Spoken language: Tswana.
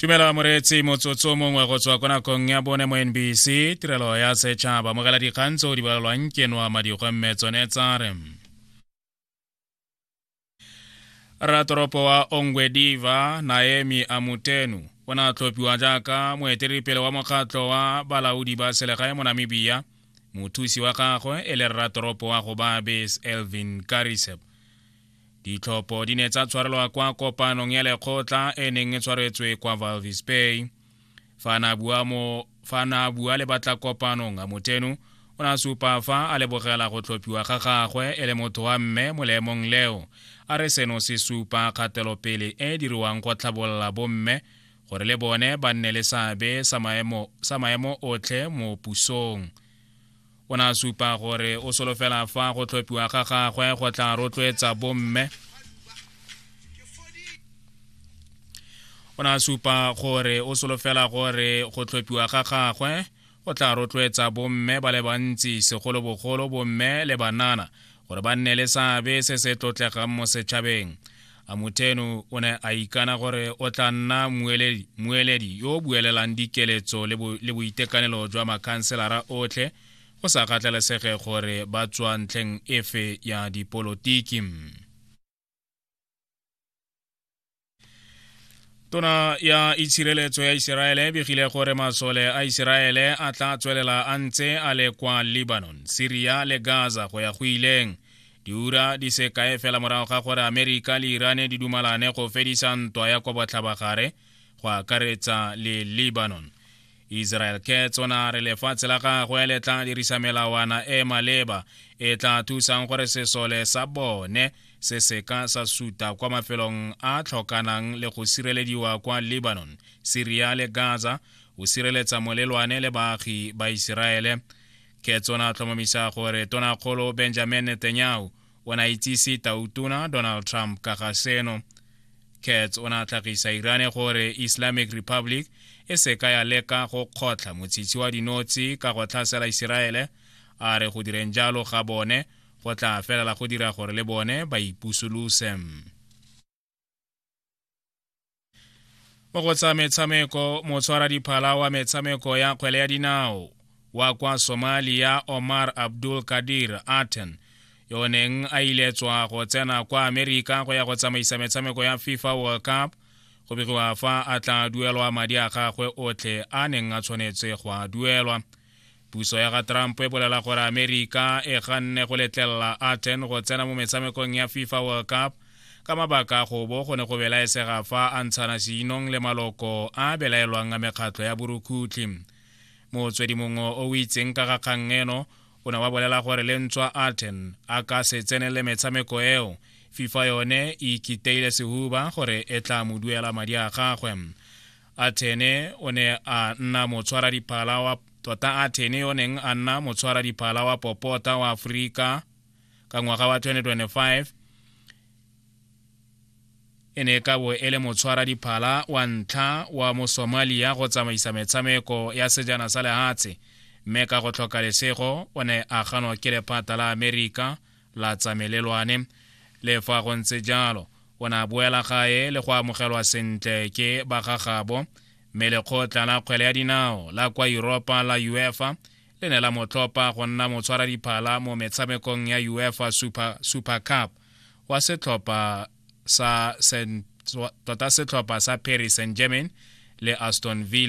tumelo moreetsi motsotso mongwe go tswa ko nakong ya bone mo nbc tirelo ya setšhaba mogela dikgang tse o di balelwang ke noa madikgwe mme tsone tsa re ratoropo wa ongwediva naemi amutenu o ne a tlhophiwa jaaka moeteledipele wa mokgatlho wa balaodi ba selegae mo namibia mothusi wa gagwe e le ratoropo wa go babes elvin karisep ditlhopho di ne tsa tshwarelwa kwa kopanong ya lekgotla e neng e tshwaretswe kwa valvis bay fa na bua mo fa na bua le batla kopanong a motenu o ne a supa fa a lebogela go tlhophiwa ga gagwe e le motho wa mme mo leemong leo a re seno se supa kgatelopele e e diriwang go tlhabolola bomme gore le bone ba nne le seabe sa maemo otlhe mo pusong o ne a supa gore o solofela fa go tlhophiwa ga gagwe go tla rotloetsa bomme o ne a supa gore o solofela gore go tlhophiwa ga gagwe go tla rotloetsa bomme ba le bantsi segolobogolo bomme le banana gore ba nne le seabe se se tlotlegang mo setšhabeng a moteno o ne a ikana gore o tla nna mueledi, mueledi yo o buelelang dikeletso le, bo, le boitekanelo jwa makhanselara otlhe go sa kgathalesege gore ba tswa ntlheng efe ya dipolotiki tona ya itshireletso ya iseraele e begile gore masole a iseraele a tla tswelela a ntse a le kwa lebanon syria le gaza go ya go ileng diura di se kae fela morago ga gore amerika le irane di dumalane go fedisa ntwa ya kwa botlhabagare go akaretsa le lebanon israel ke tsona re lefatshe la gagwe le tla dirisa melawana e maleba e tla thusang gore sesole sa bone se seka sa suta kwa mafelong a tlhokanang le go sirelediwa kwa lebanon syria le gaza go sireletsa molelwane le baagi ba iseraele ke tsona tlhomamisa gore tonakgolo benjamin netanyahu o ne a itsise tautona donald trump ka ga seno kats o ne a tlhagisa irane gore islamic republic e se ka ya leka go kgotlha motshitshi wa dinotshi ka go tlhasela iseraele a re go direng jalo ga bone go tla felela go dira gore le bone ba ipusolose mo go tsa metshameko motshwara diphala wa metshameko ya kgwele ya dinao wa kwa somalia omar abdul kadir aten yo neng a iletswa go tsena kwa amerika go ya go tsamaisa metshameko ya fifa world cup go begiwa fa a tla duelwa madi a gagwe otlhe a neng a tshwanetse go a duelwa Puso ya ga Trump e bolela gore Amerika e ganne go letlelela Aten go tsena mo metshamekong ya FIFA World Cup ka mabaka a go bo go ne go belaesega fa a ntshana seinong le maloko a belaelwang a mekgatlho ya borukhutlhi motswedi mongwe o o itseng ka ga kgang eno o ne wa bolela gore le ntswa aten a ka se tsenele metshameko eo fifa yone e ikiteile sehuba gore e tla mo duela madi a gagwe Athene o ne a nna motshwaradiphala wa tota Athene yo neng a nna motshwaradiphala wa popota wa Aforika ka ngwaga wa 2025 e ne ka bo e le motshwaradiphala wa ntlha wa mo Somalia go tsamaisa metshameko ya sejana sa lehatshe mme ka go tlhoka lesego o ne a ganwa ke lephata la Amerika la tsamelelwane le fa go ntse jalo o ne a boela gae le go amogelwa sentle ke bagagabo mme lekgotla la kgwele ya dinao la kwa europa la uefa le ne la motlhopa go nna motshwaradiphala mo metshamekong ya uefa super, super cup wa setlhopha sa tota setlhopha sa paris saint germain le aston villa